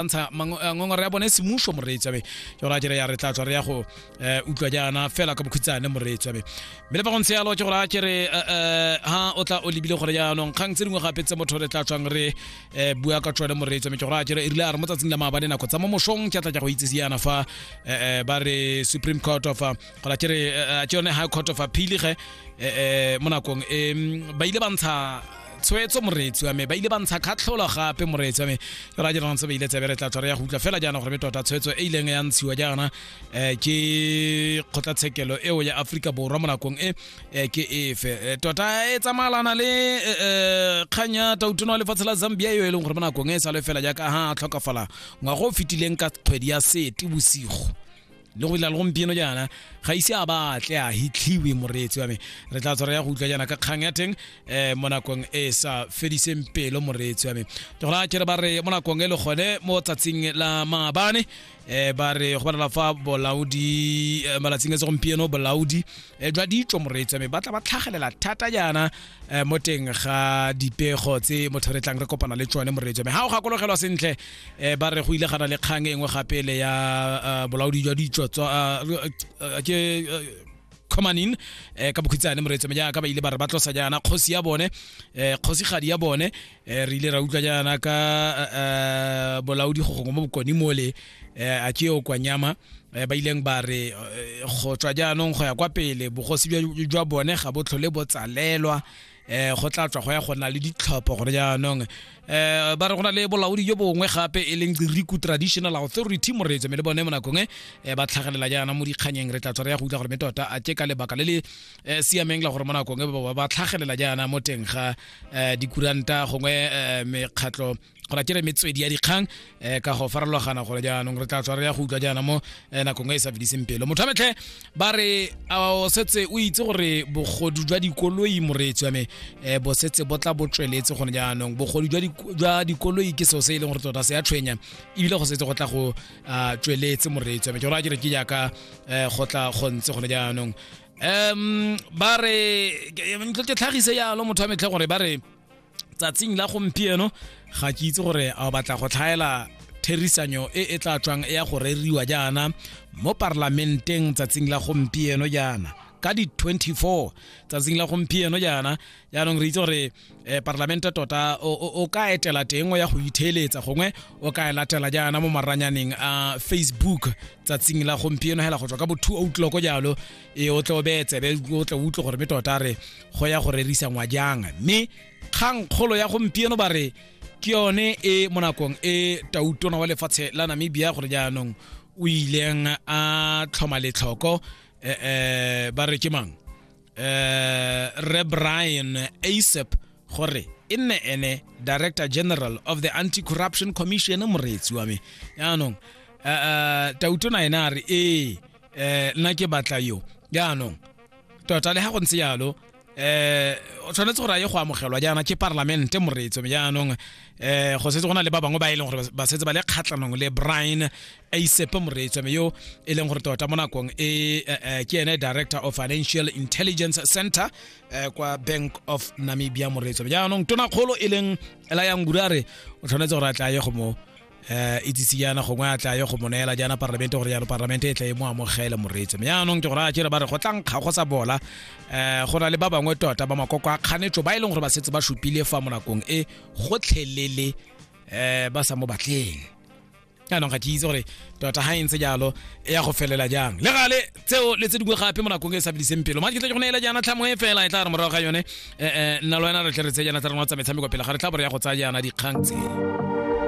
ntsha eh, ngongora ya bone e semuso moreetsi abe ke gore a kere ya re tla tswa re ya go eh, utlwa jaana fela ka bokhutshane moreetsi abe mme le ba go ntse yalo ke gore a kere eh, ha o tla o lebile gore jaanong kgang tse dingwe gape tse motho re tla tswang re bua ka tsone moreetsi abe ke gore a kere e rile a re mo tsatsing la maabane nako tsa mo mosong ke tla tla go itsise yana fa ba re supreme court of gore a kere ke yone high court of appeal ge mo nakong e ba ile ba ntsha tshwetso moreetsi wa me ba ile ba ntsha kgatlholo gape moreetsi wa me ke ra dirang se ba ile tsebe re tla tshwara ya go utlwa fela jaana gore me tota tshwetso e ileng ya ntshiwa jaana um ke kgotlatshekelo eo ya aforika borwa mo nakong e eh, ke efe Eh, tota e tsamayalana le um kgang ya tautono wa lefatshe la zambia eo e leng gore mo nakong e e sale fela jaaka ha a tlhokafala ngwago o fetileng ka kgwedi ya sete bosigo le go ila le gompieno jaana ga ise a batle a hitlhiwe moreetsi wa me re tla tswara ya go utlwa jaana ka kgang ya teng um mo nakong e sa fediseng pelo moreetsi wa me ke gona kere ba re mo nakong e le gone mo tsatsing la maabane um ba re go balela fa bolaodi eh, malatsing a segompieno bolaodi Eh, jwa ditso moreetsa me batla ba tlhagelela thata jaana eh, mo teng ga dipego tse motho re tlang re kopana le tsone moreetsa me ga o gakologelwa sentle eh, ba re go ile gana le kgang e nngwe gape le ya bolaodi jwa ditso ke comanin eh, ka bokhitsane moreetso me jaaka ba ile ba re ba tlosa jaana kgosi ya bone eh, kgosigadi ya bone eh, re ile ra utlwa jaana ka uh, bolaodi go gongwe mo bokone mole eh, a ke o kwa nyama eh, ba ileng ba re eh, go tswa jaanong go ya kwa pele bogosi jwa bone ga bo tlhole bo tsalelwa eh go tla tswa go ya go na le ditlhopho gore jaanong eh ba re go na le bolaodi jo bongwe gape e leng riku traditional authority moreetso me le bone mo nakong e ba tlhagelela jaana mo dikganyeng re tla tswa re ya go utlwa gore me tota a ke ka lebaka le le siameng la gore mo nakong e ba tlhagelela jaana mo teng ga um dikuranta gongwe um mekgatlho gona ke re metswedi ya dikgang um ka go farologana gore jaanong re tla tswa re ya go utlwa jaana mo eh, nakong e e sa fediseng pelo motho a metlhe ba re o setse o itse gore bogodu jwa dikoloi moreetsi wa me um bo setse bo tla bo tsweletse gone jaanong bogodu jwa dikoloi ke seo se e leng gore tota se ya tshwenya ebile go setse go tla go ah, tsweletse moreetsi wa me ke gore a ke re ke jaaka um go tla go ntse gone jaanong um ba re ntlo ke tlhagise yalo motho wa metlhe gore ba re tsatsing la gompieno ga ke itse gore a o batla go tlhaela therisanyo e e tla tswang e ya go reriwa jaana mo parlamenteng tsatsing la gompieno jaana ka di-24 tsatsing la gompieno jaana jaanong re itse gore um parlamente tota o ka etela teng o ya go itheeletsa gongwe o ka e latela jaana mo maranyaneng a facebook tsatsing la gompieno hela go tswa ka bo two outloko jalo e o tle o beye tsebe o tle utlwe gore me tota re go ya go rerisa ngwa jang mme kgang kgolo ya gompieno ba re ke yone e mo nakong e tautona wa lefatshe la namibia gore jaanong o ileng a tlhoma letlhoko um ba re ke mang uh, re brian asap gore e nne ene director general of the anti-corruption commission moreetsi wa me yaanong uh, uh, tauto na ene a re ee eh, nna ke batla yo yaanong tota le ga go ntse yalo eh o tshwanetse gore a ye go amogelwa jaana ke parlamente moreetso jaanong eh go setse go na le ba bangwe ba e leng gore ba setse ba le kgatlhanong le brian a isepe moreetswame yo e leng gore tota mo nakong e eh, eh, ke ene director of financial intelligence center eh, kwa bank of namibia moreetswame jaanong tonakgolo e leng ela yang gure a re o tshwanetse gore a tla ye go mo um itsise jaana gongwe a tla ye go mo neela jaana parlamente gore jalo parlamente e tla e mo amogele moreetse me jaanong ke gore a jere ba re go tla nkga go sa bola um go na le ba bangwe tota ba makoko a kganetso ba e leng gore ba setse ba supile fa mo nakong e gotlhelele um ba sa mo batleng jaanong ga ke itse gore tota ga e ntse jalo e ya go felela jang le gale tseo le tse dingwe gape mo nakong e sa bidiseng pelo madi ke tle go neela jaana tlhamo e fela e tla re morago ga yone um nna le wena re tle re tse jaana tsa rena tsa metshameko pele ga re tla bore ya go tsaya jaana dikgang tse